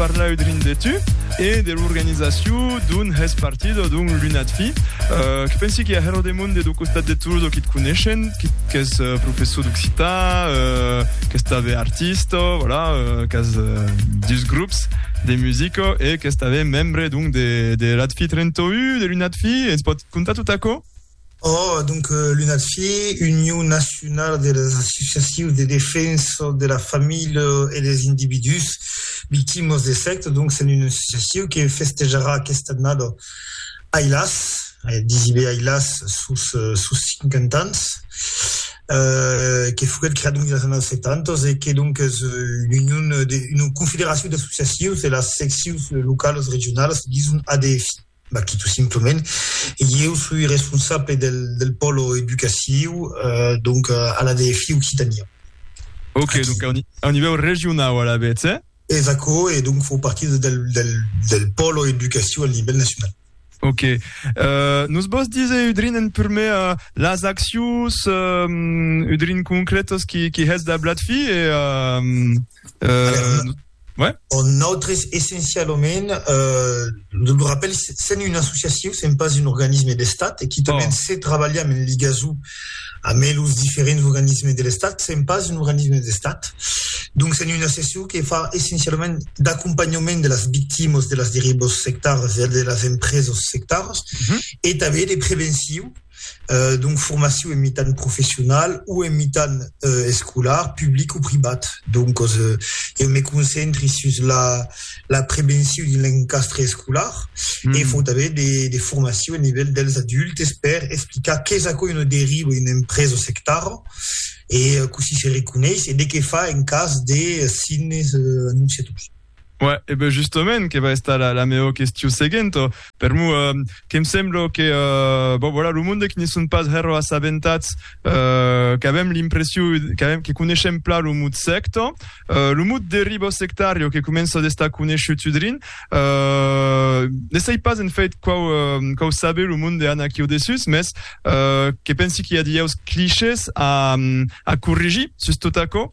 parlà'u drin de tu e de l'organizacion d'un hèst partido d'un lunatfi euh, que pensi que a Hero de Monde do costat de Toulouse o qui te coneishen, qui qu'es euh, professor d'occità, euh, qu'es també artista, voilà, euh, qu'es euh, dus grups de musica e qu'es també membre d'un de, de l'Atfi 31, de l'Unatfi, ens pot contar tot aquò? Oh, donc l'UNADFE, Union Nacionala de las Associacions de Defensa de la Familha e dels Individús Victimas de Sècta, donc s'en una associacion que festejarà aquesta annada, ai las, disi be ai las, sos 50 ans, que foguèt creada dins las annadas 70 e que donc es una confederacion d'associacions de las seccions localas regionalas, dison ADFI. Bah, que tot simplement, ieu soi responsable del, del pòlo educaciu, eh, donc, a la DFI Occitania. Ok, Aquí. donc a un, a un nivèu regionau alavetz, eh? E s'aquò, e donc fau partir de, del, del, del pòlo educaciu al nivèl nacional. Ok. Eh, nos vòs diser, Udrin, en prumèr, eh, las accions, eh, Udrin, concrètas qui, qui hètz dablat fi, e, eh, eh, Aler, no. Ouais. On nautres essencialament, euh, lo rappel, sen un associatiu, sen pas un organisme d'estat, e quitament oh. se trabalham en ligazou amb los diferents organismes de l'estat, sen pas un organisme d'estat. Donc sen un associatiu que fa essencialament d'acompanhament de las victimas de las derivas sectaras e de las empresas sectaras, mm -hmm. e també de preventiu donc formacion en mitan professional o en mitan escolar, public o privat. Donc eu me concentri sus la prevencion de l'encastre escolar e fau tanben de formacion a nivèl dels adultes per explicar qu'es aquò una deriva, una empresa sectara e cossí se reconeis e de qué far en cas de signes anonciators. Uè, e ben justament que va estar la, la meo question seguenta. Per mo, eh, que me sembla que, eh, bon, voilà, lo monde que ne son pas hèro assabentats, eh, qu'avem l'impression, qu'avem, que coneishem pla lo mot secta, eh, lo mot deribo sectario que comença d'estar coneishut udrin, eh, ne sai pas en fait quau, eh, quau sabe lo monde an aquiu dessus, mes, eh, que pensi qu'i a dieus clichés a, a corrigir sus tot aquò,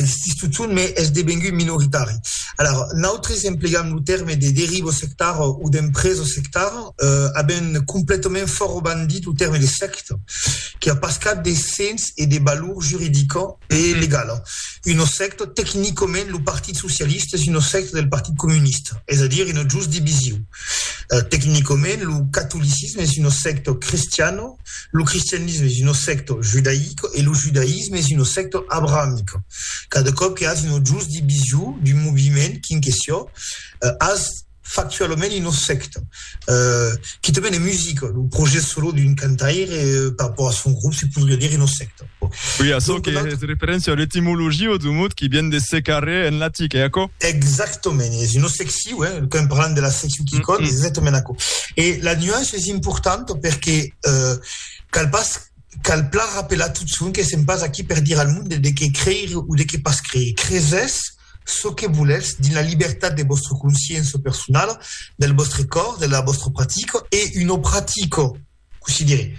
Insistís totun, me es devengut minoritari. Alar, nautres emplegam lo tèrme de derivo sectar o d'empreso sectar, avent completament fòro bandit lo tèrme de secta, que a pas cap de sens e de valor juridica e legala. Una secta, tecnicament, lo Partit Socialista es una secta del Partit Comunista, es a dire una just divisiu. Tecnicament, lo catolicisme es una secta cristiana, Lo cristianisme es una secta judaica e lo judaïsme es una secta abrahamica. Cada còp que has una just division d'un moviment quin que siá, has factualament una secta. Quitament en musica, lo projèct solo d'un cantaire per apoar son grop se podriá dire una secta. Oui, açò Donc, que la... es referéncia a l'etimologia du mot qui vient de secarrer en latic, eh, aquò? Exactament, es una secciu, eh, quand parlant de la secciu qui mm -hmm. es exactament aquò. E la nuance es importanta perque eh, cal pas cal plan rappelar tot son que sem pas aquí per dire al mond de que creir ou de que pas creir. Creses ce que volètz dins la libertat de vostra consciença personala, del vostre còr, de la vostra pratica e una pratica considere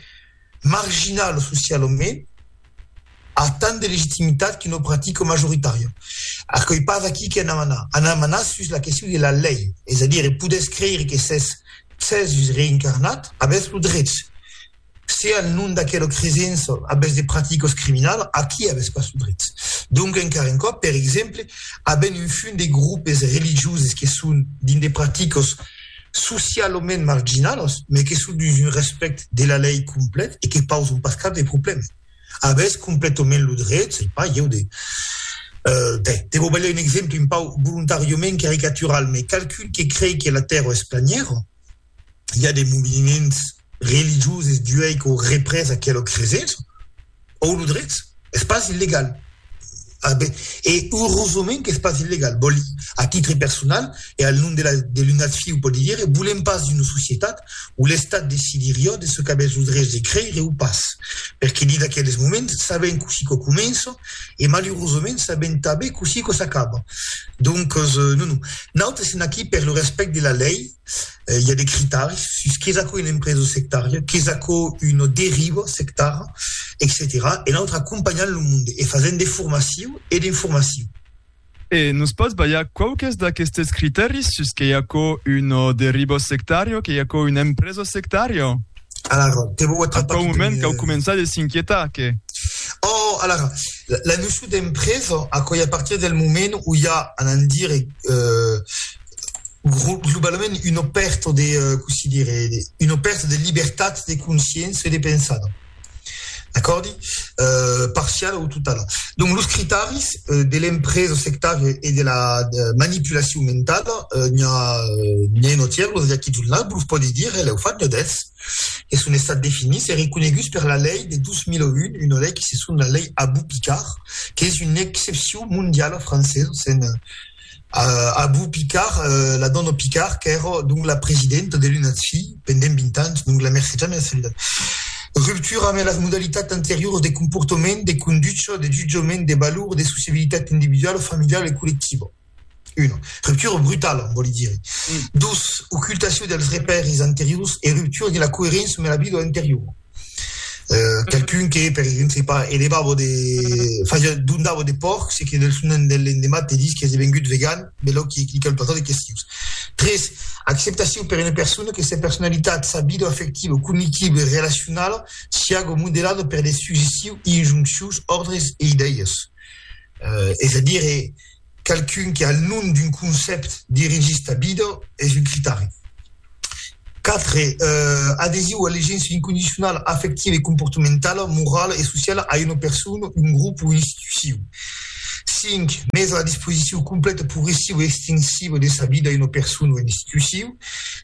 marginal o social o men, a tant de legitimitat que no pratica majoritària. Aquoi pas aquí que anam anar. Anam anar sus la question de la lei, es a dire, podètz creire que s'es Cèsus reincarnat, avètz lo drech. Se al nom d'aquela cresença avètz de praticas criminalas, aquí avètz pas lo drech. Donc, encara un còp, per exemple, avèm un fum de groupes religioses que son dins de praticas, socialament marginalos, mai que son dus un respèct de la lei complet e que pauson pas cap de problèma. Avètz completament lo dret, sei pas ieu, de, ben, te vò balhar un exemple un pauc volontàriament caricatural, mai qualqu'un que crei que la Tèrra es planièra, i a de moviments religioses d'uèi qu'au représ aquela cresença, òu lo drets, es pas illegal. A ben, e eurosament qu'es pas illegal. Bòl, a titre personal e al nom de la de l'unat fiu pòdi dire, volem pas d'una societat où l'Estat decidiriá de ce qu'avètz lo drets de creire ou pas. Perque dins aqueles moments sabem cossí quò comença e malurosament sabem tanben cossí quò s'acaba. Donques, non, non. Nautes sem aquí per lo respèct de la lei. i a de critaris sus qu'es aquò una empresa sectària, qu'es aquò una deriva sectara, etcetèra E nautre acompanhant lo monde e fasent de formaciu e d'informaciu. E nos pòts balhar quauques d'aquestes critaris sus qu'ei aquò una deriva sectària, qu'ei aquò una empresa sectària? Alara, te vau atrapar... Aquò moment qu'au començar de s'inquietar, que... Oh, alara, la, la noció d'empresa, aquò ei a partir del moment où i a, anant dire, euh, globalament una pèrta de, cossí dire, una pèrta de libertat de consciença e de pensada, d'acòrdi? Euh, parciala o totala. Donc, los critaris de l'empresa sectària e de la manipulacion mentala, n'i a, n'i a un autièr, los Jackie Journal, vos los pòdi dire, lèu fat, ne dètz, que son estats definits e reconeguts per la lei de 2001, una lei que se son la lei Abou-Picard, qu'es una excepcion mondiala francesa, se'n Abu Picard, la dòna Picard, qu'èra donc la presidenta de l'UNADFI pendent 20 ans, donc la mercetja mea solidat. Ruptura ambe las modalitats anterioras de comportament, de conducha, de jutjament, de valor, de sociabilitat individuala, familiala e collectiva. Una ruptura brutala, en vòli dire. Dos, ocultacion dels repèris anteriors e ruptura de la coeréncia ambe la vida anteriora. Qualqu'un que, per exemple, se pas, elevava de... fasiá, dondava de pòrcs e que del son en del lendemat te dis qu'es devengut vegan, belòu que clica lo patat e que sius. 3, Acceptacion per una persona que sa personalitat, sa vida afectiva, cognitiba e relacionala siága modelada per de suggestius, injonccions, òrdres e idèias. Es a dire, qualqu'un que al nom d'un concèpt dirigís ta vida es un critari. 4, adhesiu a l'egença incondicionala afectiva e comportamentala, morala e sociala a una persona, un grop o una institucion. 5, mes a la disposicion completa, progressiva e extensiva de sa vida a una persona o una institucion.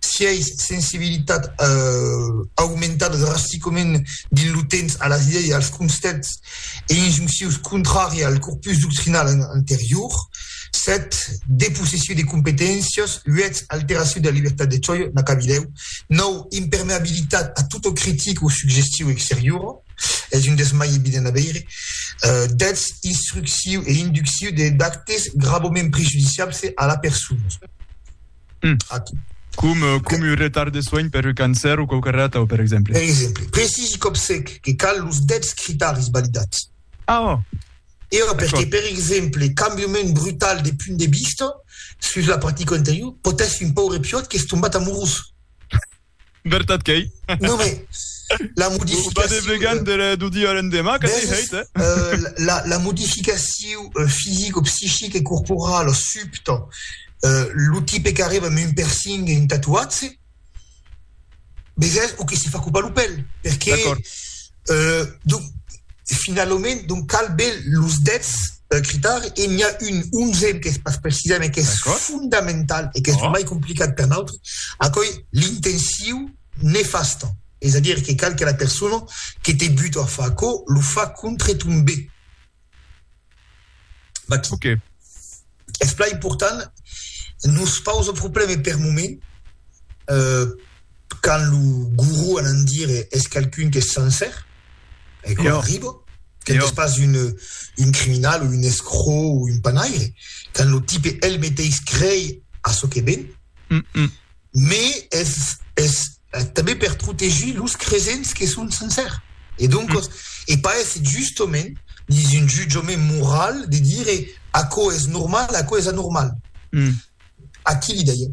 6, sensibilitat aumentada drasticament dins lo temps a las idèias e als concèpts e injunccions contrària al corpus doctrinal anterior, 7 depossession de competéncias, 8 alteracion de la libertat de chòia, n'a qu'a vidèu, 9 impermeabilitat a tota critica o suggestion exteriora, es un dels mai evidents a veire, 10 instruccion e induccion d'actes gravament prejudiciables a la persona. Mm. Aqui. Com, eh, com un retard de soin per un cancer o quauque rata, per exemple. Per exemple, precisi còp sec que cal los dèts critaris validats. Ah, oh. E oh, perque, per exemple, cambiament brutal de punt de vista sus la practica anterior, potèssi un paure piòt qu'es tombat amorós. Vertat qu'ei. Non, mais la modificacion... Pas de vegan de la, du dia a l'endemà, que t'ei hèit, eh? Euh, la, la modificacion fisic o psichic e corporala subta, euh, lo tipe qu'arriba amb un percing e un tatuatge, veges, o que se fa copar lo pèl, perqué... D'accord. Donc, finalament, donc cal be los dètz critar e n'i a un onzèm qu'es pas precisa me qu'es fondamental e qu'es mai complicat per nautre, aquoi l'intensiu nefasta, es a dire que cal que la persona que te buta a far aquò lo fa contre ton be. Vaquí. Ok. Es plan important, nos pausa probleme per moment, quand lo guru anant dire es qualqu'un qu'es sencer, e quò arriba, quand es pas un criminal o un escrò o un panaire, quand lo tipe el meteis crei a çò que ven, me es tanben per protegir los cresents que son sensèr. E doncos, e pas èsser justament dins un jutjament moral de dire aquò es normal, aquò es anormal. Aquí l'idèia.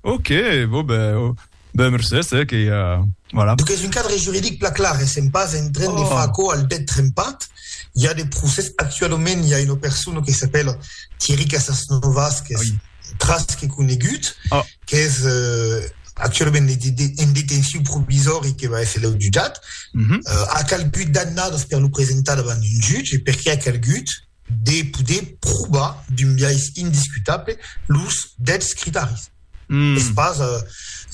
Ok, bon ben, ben mercés, eh, que ja, voilà. Donc es un cadre juridic plan clar, e sèm pas en tren de far aquò al det trempat. I a de procès, actualament i a una persona que s'apèla Thierry Casasnovas qu'es tras que conegut, oh. qu'es uh, actualament en detenció provisòri que va esser leu jutjat, uh -huh. uh, ha calgut d'annadas per lo presentar davant un jutge, perquè ha calgut de poder provar d'un biais indiscutable los dets critaris. Mm. Es pas, uh,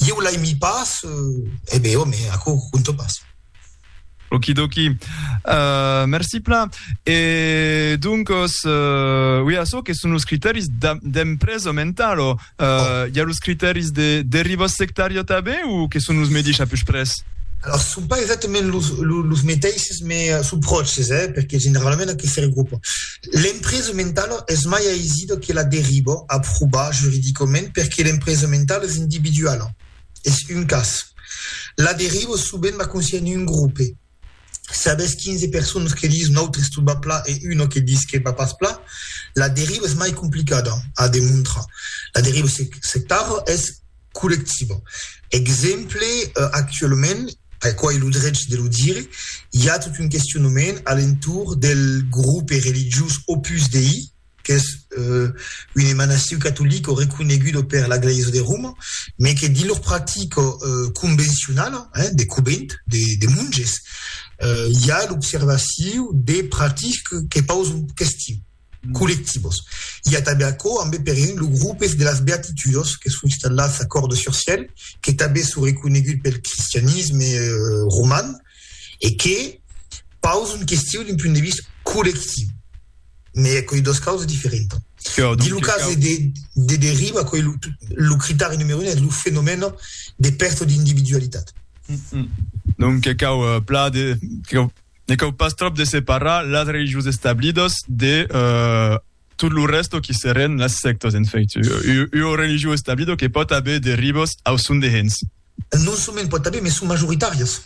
eu l'aimi pas, uh, eh bé, home, aquò conto pas. Okidoki. Uh, merci plan. E doncos, uh, oui, açò que son los criteris d'empresa mentalo, uh, oh. hi ha los criteris de deriva sectària també o que son los medis a pus pres? Alors, ce sont pas exactement les métaïs, mais euh, sous proches, hein, parce que généralement, on a que faire groupe. L'empresa mentale est mai aisida que la deriva, approuvée juridiquement, parce que l'empresa mentale est individuelle. es un cas. La deriva sovent va consistir en un grope. Se avètz 15 personas que dison autres tot va pla e una que dis que va pas pla, la deriva es mai complicada a demontrar. La deriva sectària es collectiva. Exemple, actualament, aquò es lo drech de lo dire, i a tot un questionament a l'entorn del grope religiós Opus Dei, qu'es un emanaciu catolic reconegut per la Glèisa de Roma, mes que dins lor practica convencionala de covent, de monges, i a l'observaciu de practicas que pausan questions collectivas. I a tanben aquò ambe, per exemple, lo grupes de las Beatitudas, que son installats a Cordes-sur-Ciel, que tanben son reconegut pel cristianisme roman, e que pausa un question d'un punt de vista collectiu, mès aquoi dos causas diferentas. Dins lo cas de, de deriva, aquoi lo, lo critèri numero un es lo fenomèn de pèrta d'individualitat. Donc que cau uh, pla de, que cau, ne cau pas trop de separar las religions establidas de uh, tot lo rèsto qui serén las sèctas, en fèit, ua religion establida que pòt aver de ribos au son de hens. Non soment pòt aver, mes son majoritàrias.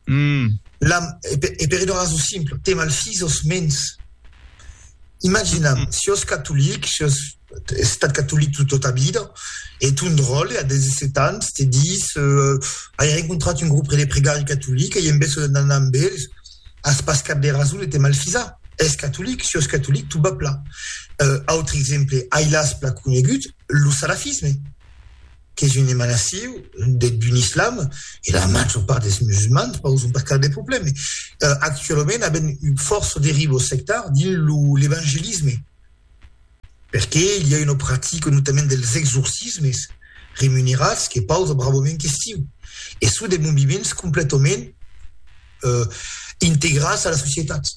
Hum. La, e per ua rason simpla, te malfis aus mens. Imaginam, si aus catolic, si aus estat catolic tota ta vida, e ton dròlle, a 17 ans, te dis, Ai rencontrat un grup de pregari catolic, ei en bèso d'anar amb ells, As pas cap de rason de te malfisar. Es catolic, sios catolic, tu bap la. Autre exemple, ailàs pla conegut, lo salafisme, qu'es un emanaciu deth bun islam, e la major part des musulmans pauson pas cap de problème. Actualament aben un fòrça derivos sectars dins lo l'evangelisme. Perqué i a una practica notament dels exorcismes remunerats que pausa bravament question e çò de moviments completament integrats a la societat.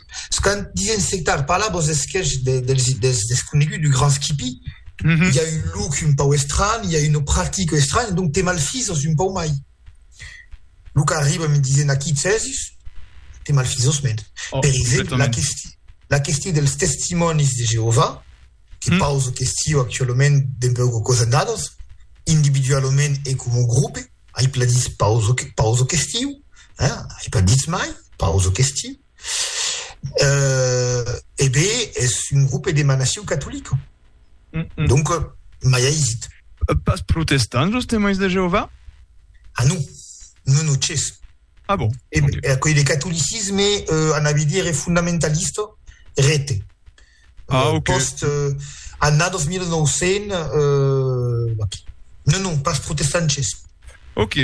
Quand disen sectar, parla vos esquèch dels desconeguts, du grand skippy, i a un look un pau estranh, i a una practica estranh, donc te malfises un pau mai. Lo qu'arriba me disen aquí Cèsis, te malfisòs mèn. Oh, per exemple, la questió, la questió dels testimònis de Jehovà, que mm. pauso questió actualament d'un peu que cosa dados, individualament e com un grup, ai pas dit pauso, pauso questió, hein? ai pas dit mai pauso questió. Euh, e bé, es un grupe de manaciu catolic. Mm -mm. Donc, mai aisit. Pas protestants, los temais de Jehovà? Ah non, non, non, ches. Ah bon? E, okay. e, e catolicisme, euh, anavi dire, fundamentalista, rete. euh, ah, okay. post euh, anna 2900 euh, non non pas protestantes Ok.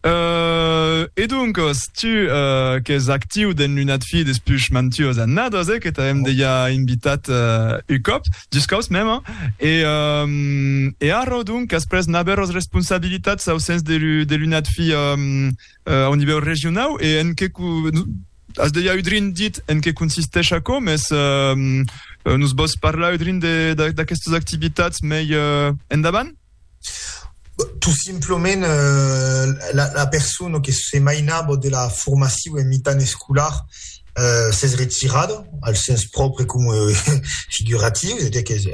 Euh, e donc, si tu euh, que es actiu dans l'unat fi des puix mantios a nados, eh, que t'avem oh. deia invitat euh, un cop, dus cops même, hein? et, euh, et ara, donc, après n'aver les responsabilitats au sens de l'unat fi euh, euh, au niveau régional, et en que As dejà udrin dit en qué consistèsh aquò, mès nos vòs parlar udrin d'aquestas activitats mei endavant? Tot simplement, la persona que se mainava de la formacion en mitan escolar s'es retirada, al sens pròpre coma figuratiu, es a dire qu'es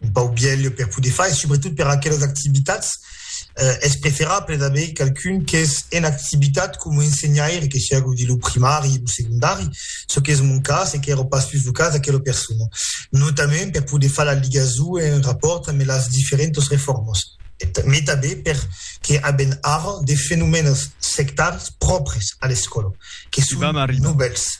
un pauc vièlh per poder far e subretot per aquelas activitats es preferable d'aver qualqu'un qu'es en activitat coma ensenhaire, que siágu dins lo primari, lo segondari, çò qu'es mon cas e qu'èra pas sus lo cas d'aquela persona. Notament per poder far la ligason en rapòrt amb las diferentas reformas, mai tanben per que avèm ara de fenomènas sectaris pròpris a l'escòla que son novèls.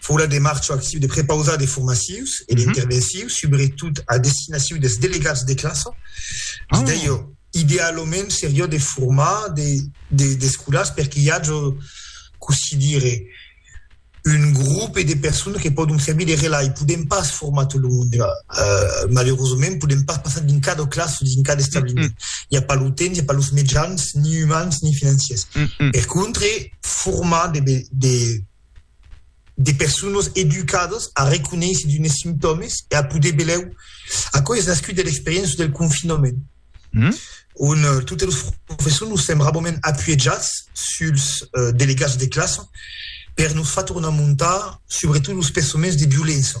Fola de marcho actiu de prepausar de formatius e d'intervencius, subretot a destinaciu des delegats de classa. Es dèio idealament serió de formar des scolars per qu'i ajo, cossí dire, un grope de personas que pòdon servir de relai. Podèm pas formar tot lo monde, malerosament, podèm pas passar dins cada classa o dins cada establiment. I a pas lo temps, i a pas los mejans, ni umans ni financiers. Per contre, formar de de personas educadas a reconéisser d'unes simptòmes e a poder belèu. Aquò es nascut de l'experiéncia del confinament, mm? on eh, totes los professors nos sèm rabament apuejats suls eh, delegats de classa per nos far tornar montar, subretot los pensaments de violéncia.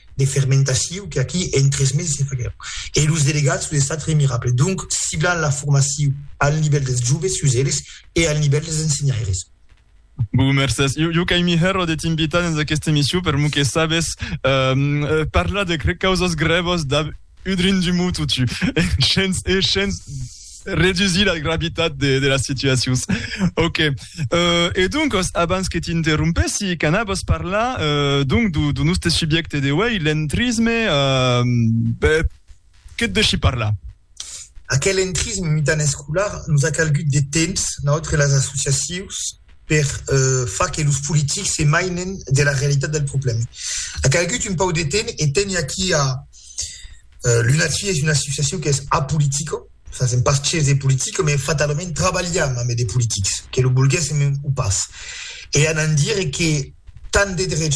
de fermentaciu que aquí en tres meses se faguèron e los delegats son estats remirables, donc ciblant la formaciu al nivèl dels joves sus eles e al nivèl dels ensenhaires. Bou, mercés. Jo, jo qu'ai mihèro de t'invitar dens aquesta emission per mou que sabes parlar de causas grèvas dab Udrin du mot o tu. Shens, e shens redusir la gravitat de, de las situacions. Ok. Euh, e donc, abans que t'interrompessi, canabos parlar euh, donc du, du nostre subjecte de uei, l'entrisme, euh, ben, que te deixi parlar? Aquel entrisme mitan escolar nos a calgut de temps, notre les associacions, per euh, far que los politics se mainen de la realitat del problème. A calgut un pau de temps e teni aquí a Euh, l'UNACI es una associacion qu'es apolitica, fasèm pas ches de politica, me fatalament trabalham ambe de politics, que lo volguèssem o pas. E anant dire que tant de drechs